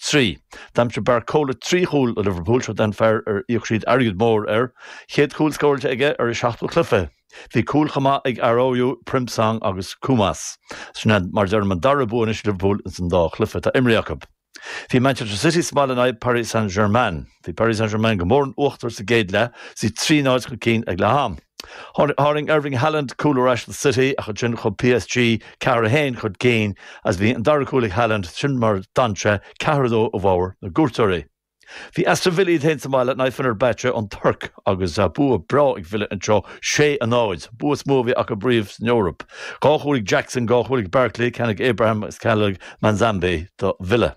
3, D'aimsigh Barcola dhá chúl do Liverpool, seo den fear ar íoc siad airgead mór air, chéad chúl scóráilte aige ar a seachtú cluiche. Bhí cúil chomh maith ag Araújo, Frimpong agus Koumas. Sin mar a deirim an dara bua anois ag Liverpool ins an dá chluiche atá imrithe acu. Bhí Manchester City sa mbaile in aghaidh Paris Saint-Germain. Bhí Paris Saint-Germain go mór in uachtar sa gcéad leath, is iad trí náid chun cinn ag leath am. Tharraing Erling Haaland cúl ar ais do City ach ansin chuaigh PSG ceathair a haon chun cinn agus bhí an dara cúl ag Haaland, sin mar a d'fhan sé ceathair a dó i bhfabhar na gcuairteoirí. Bhí Aston Villa iad féin sa mbaile in aghaidh Fenerbahce na Tuirce agus bua breá ag Villa anseo, sé a náid, bua is mó a bhí acu riamh san Eoraip. Dhá chúl ag Jackson, dhá chúl ag Barkley, ceann ag Abraham agus ceann ag Manzambi do Villa.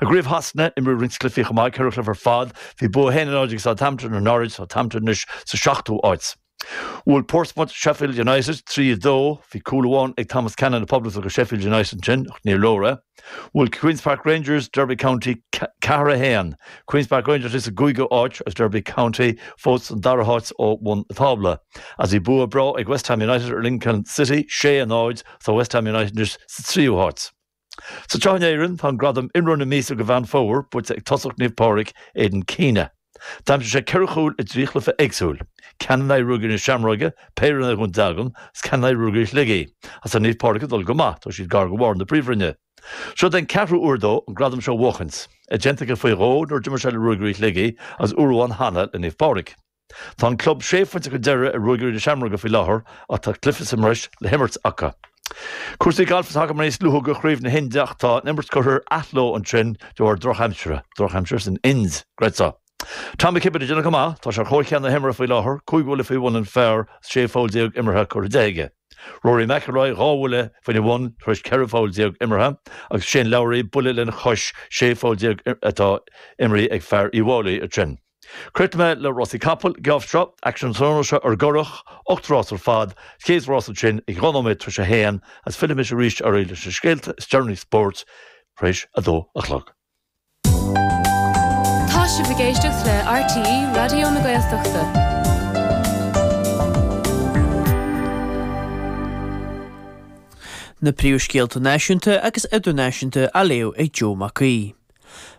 I gCraobh Shasana, imríodh roinnt cluichí chomh maith, ceithre chluiche ar fad. Bhí bua a haon a náid ag Southampton ar Norwich, Southampton anois sa seachtú áit. Bhuail Portsmouth Sheffield United trí, a dó. Bhí cúl amháin ag Thomas Cannon na Poblachta do Sheffield United ansin, ach níor leor é. Bhuail Queens Park Rangers Derby County ceathair, a haon. Queens Park Rangers anois sa gcúigiú áit, agus Derby County fós san dara háit ó bhun an tábla. As bhí bua breá ag West Ham United ar Lincoln City, sé, a náid. Tá West Ham United anois sa tríú háit. Anseo in Éirinn tá an gradam Imreoir na Míosa do Mheán Fómhair buaite ag tosaí Naomh Pádraig, Aidan Keena. D'aimsigh sé ceithre chúl i dtrí chluiche éagsúil, ceann in aghaidh Ruagairí na Seamróige, péire in aghaidh Dhún Dealgan agus ceann in aghaidh Ruagairí Shligigh. Is tá Naomh Pádraig ag dul go maith, tá siad gar do bharr na Príomhroinne. Seo den ceathrú uair dó an gradam seo a bhuachaint, é déanta aige faoi dhó nuair a d'imir sé le Ruagairí Shligigh agus uair amháin cheana le Naomh Pádraig. Tá an club sé phointe chun deiridh ar Ruagairí na Seamróige faoi láthair ach tá cluiche sa mbreis le himirt acu. Cúrsaí gailf atá agam anois luaite do Craobh na hInde ach tá an imirt curtha ar athló ansin de bharr drochaimsire, drochaimsir san Ind, an gcreidfeá. Tom McKibbin ag déanamh go maith, tá sé ar chomhcheann na himeartha faoi láthair, cúig bhuille faoi bhun an phar is 16 pholl imeartha curtha de aige. Rory McIlroy dhá bhuille faoina bhun tar éis 14 pholl imeartha agus Shane Lowry buille lena chois, 16 pholl atá imeartha ag fear Uíbh Fhailí ansin. Críochnóidh mé le Rásaí Capall, geábh seo, aicsean tráthnóna seo ar an gCurrach, ocht rás ar fad, chéad rás ansin ag dhá nóiméad tar éis a haon agus fillfidh muid arís ar aghaidh leis na scéalta is deireanaí spóirt tar éis a dó a chlog. Tá sibh ag éisteacht le RTÉ Raidió na Gaeltachta. Na príomhscéalta náisiúnta agus idirnáisiúnta á léamh ag Joe Mac Aoidh.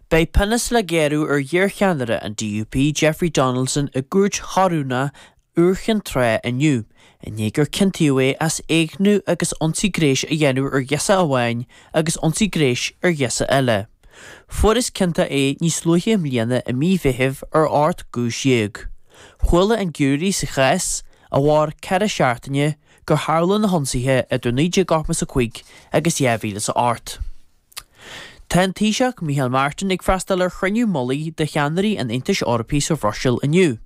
Beidh pionós le géarú ar iarcheannaire an DUP Jeffrey Donaldson i gCúirt Chorónach Iúr Cinn Trá inniu i ndiaidh gur ciontaíodh é as éigniú agus ionsaí gnéis a dhéanamh ar ghirseach amháin agus ionsaí gnéis ar ghirseach eile. Fuarthas ciontach é níos luaithe i mbliana i mí Mheithimh ar ocht gcúis dhéag. Chuala an giúiré sa chás, a mhair ceithre seachtaine, gur tharla na hionsaithe idir 1985 agus 2008. Tá an Taoiseach Micheál Martin ag freastal ar chruinniú mullaigh de cheannairí an Aontais Eorpaigh sa Bhruiséil inniu.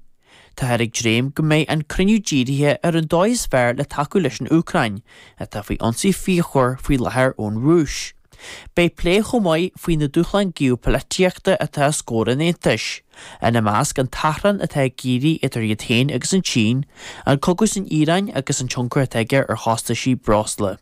Táthar ag dréim go mbeidh an cruinniú dírithe ar an dóigh is fearr le tacú leis an Úcráin, atá faoi ionsaí fíochmhar faoi láthair ón Rúis. Beidh plé chomh maith faoi na dúshláin geopoilitíochta atá os comhair an Aontais, ina measc an t-achrann atá ag éirí idir iad féin agus an tSín, an cogadh san Iaráin agus an tionchar atá aige ar chostasí breosla.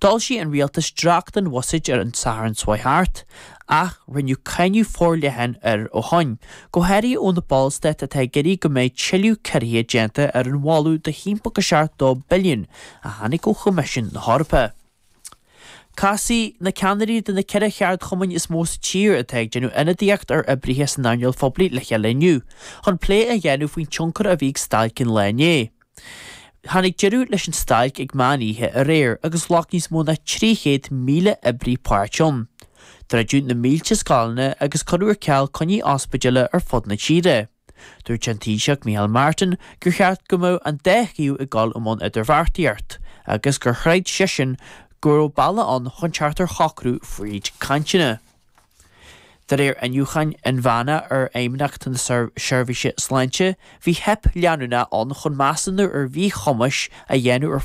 D'fhoilsigh an rialtas dréacht den bhuiséad ar an Satharn seo thart, ach rinneadh cáineadh forleathan air ó shin, go háirithe ó na ballstáit atá ag iarraidh go mbeidh tuilleadh ciorruithe déanta ar an mholadh de thimpeall 2 billiún a tháinig ó Choimisiún na hEorpa. Casfaidh na ceannairí de na ceithre cheardchumainn is mó sa tír atá ag déanamh ionadaíocht ar oibrithe san earnáil phoiblí le chéile inniu chun plé a dhéanamh faoin tionchar a bhí ag stailc an lae inné. Tháinig deireadh leis an stailc ag meán oíche aréir agus ghlac níos mó ná 300,000 oibrí páirt ann. Druideadh na mílte scoileanna agus cuireadh ar ceal coinní ospidéile ar fud na tíre. Dúirt an Taoiseach Micheál Martin gur cheart go mbeadh an dá thaobh ag dul i mbun idirbheartaíocht agus gur chreid seisean go raibh bealaigh ann chun teacht ar shocrú fríd cainteanna. De réir iniúcháin inmheána ar Fheidhmeannacht na Seirbhíse Sláinte, bhí teip leanúnach ann chun measúnú ar mhíchumais a dhéanamh ar